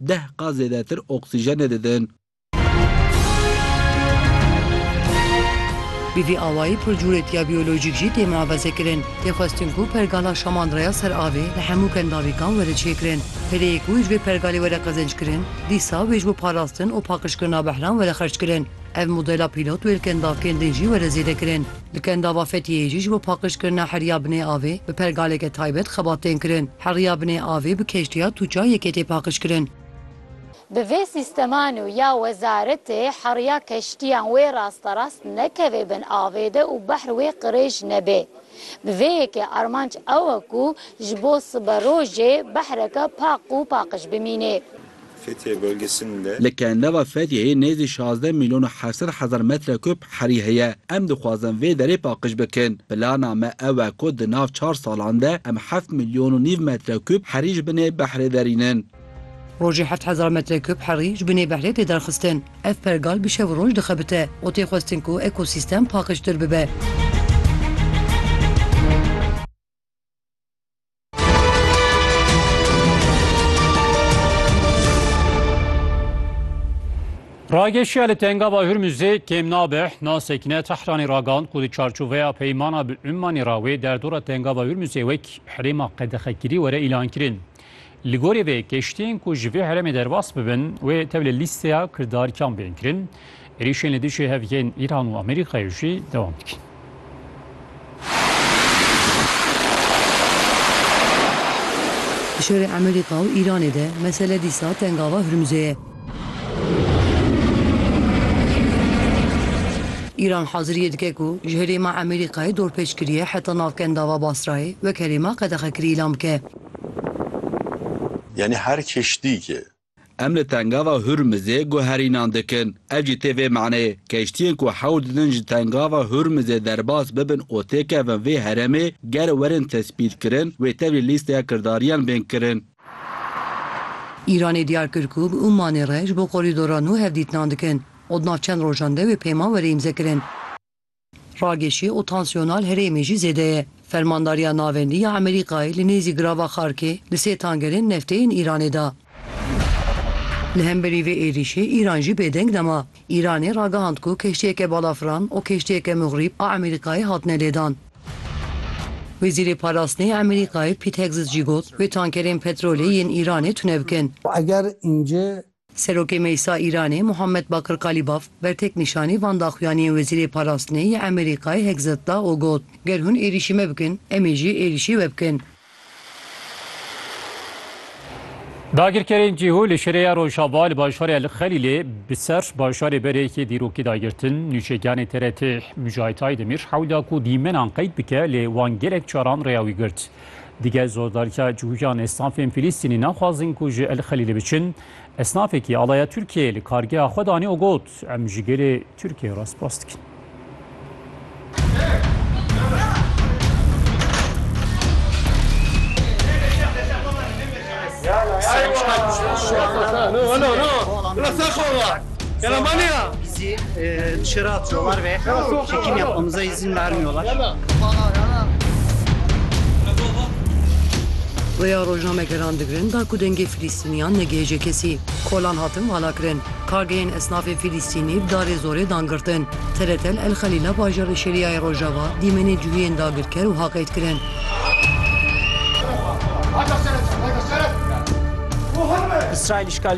Deh qat zêdetir oksîjenê didin. Bi vî awayî pircûrêtiya biyolojîk jî tê muefazekirin. Tê xwestin ku pergala Şamandraya ser avê li hemû kendavîkan were çêkirin. Pereyê ku ji vê pergalê were qezenckirin, dîsa wê ji bo parastin û paqijkirina behran were xerckirin. Ev modela pîlot wê li kendavkên din jî were zêdekirin. Li Kendava Fetiyê jî ji bo paqijkirina heriya binê avê bi pergaleke taybet xebat tên kirin. Heriya binê avê bi keştiya Tuca yekê tê paqijkirin. Bi vê sîsteman û ya wezaretê heriya keştiyan wê rasterast nekeve bin avê de û behr wê qirêj nebe. Bi vê yekê armanc ew e ku ji bo siberojê behreke paq û paqij bimîne. Fethiye bölgesinde. Li Kenleva Fethiyeyê nêzî şazdeh mîlyon û heft sed hezar metrekûb herî heye. Em dixwazin vê derê paqij bikin. Plana me ew e ku di nav çar salan de em heft mîlyon û nîv metrekûb herî ji binê behrê derînin. Rojê heft hezar metrekûb herî ji binê behrê tê derxistin. Ev pergal bi şev û roj dixebite û tê xwestin ku ekosîstem paqijtir bibe. Rageşiya li Tengava Hürmüzê kêm nabe nasekine Tehranê ragand ku di çarçoveya peymana bi Ummanê ra wê derdora Tengava Hürmüzê wek herêma qedexekirî were îlankirin. Li gorî vê keştiyên ku ji vê herêmê derbas bibin wê tevlî lîsteya kirdarkiyan bên kirin. Êrîşên li dijî hev yên Îran û Amerîkayê jî dewam dikin. Di şerê Amerîka û Îranê de mesele dîsa tengava Hurmuzê ye. Îran haziriyê dike ku ji herêma Amerîkayê dorpêç kiriye heta navkendava Basrayê wek herêma qedexekirî îlan bike. Yanî her keştîkê. Em li tengava Hurmizê guherînan dikin. Ev jî tê vê maneyê, keştiyên ku hewl didin ji tengava Hurmizê derbas bibin û têkevin vê heremê, ger werin tespîtkirin, wê tevlî lîsteya kirdariyan bên kirin. Îranê diyar kir ku bi Ummanê re ji bo korîdora nû hevdîtinan dikin û di nav çend rojan de wê peyma were îmzekirin. Ragêşî û tansiyona li herêmê jî zêde ye. Fermandariya Navendî ya Amerîkayê li nêzî girava Xarkê li sê tangerên neftê yên Îranê da. Li hemberî vê êrîşê Îran jî bêdeng nema. Îranê ragihand ku keştiyeke balafiran û keştiyeke muxrîb a Amerîkayê hatine lêdan. Wezîrê Parastinê ya Amerîkayê Pît Hegzit jî got, Wê tankerên petrolê yên Îranê tune bikin. Eger înce Serokê Meclisa Îranê Muhammed Bakir Kalîbaf bertek nîşanî van daxuyaniyên Wezîrê Parastinê yê Amerîkayê Hegseth da û got, Ger hûn êrîşî me bikin, em ê jî êrîşî we bikin. Dagirkerên cihû li şêreya Rojava li bajarê El Xelîlê bi ser bajarê berêkê dîrokî dagirtin. Nûçegiyanê TRT Mujahit Aydemîr hewla ku dîmenan qeyd bike lê wan gelek caran rêya wî girt. Dige zordarîya cihûyan esnafên Fîlîstînî naxwazin ku ji El Xelîlê biçin. Esnafekî alaya Tirkiyeyê li kargeha xwe danî û got, Em ji gelê Tirkiyeyê re spas dikin. Yaramania! Bizi e, dışarı atıyorlar ve çekim yapmamıza izin vermiyorlar. Rêya rojnamegeran digirin da ku dengê Filîstîniyan negihêje kesî. Kolan hatin valakirin. Kargeyên esnafê Filîstînî bi darê zorê dan girtin. Teletel El Xelîla bajarê Şerîyayê Rojava dîmenê cihûyên dagirker û haqêt kirin. İsrail işgal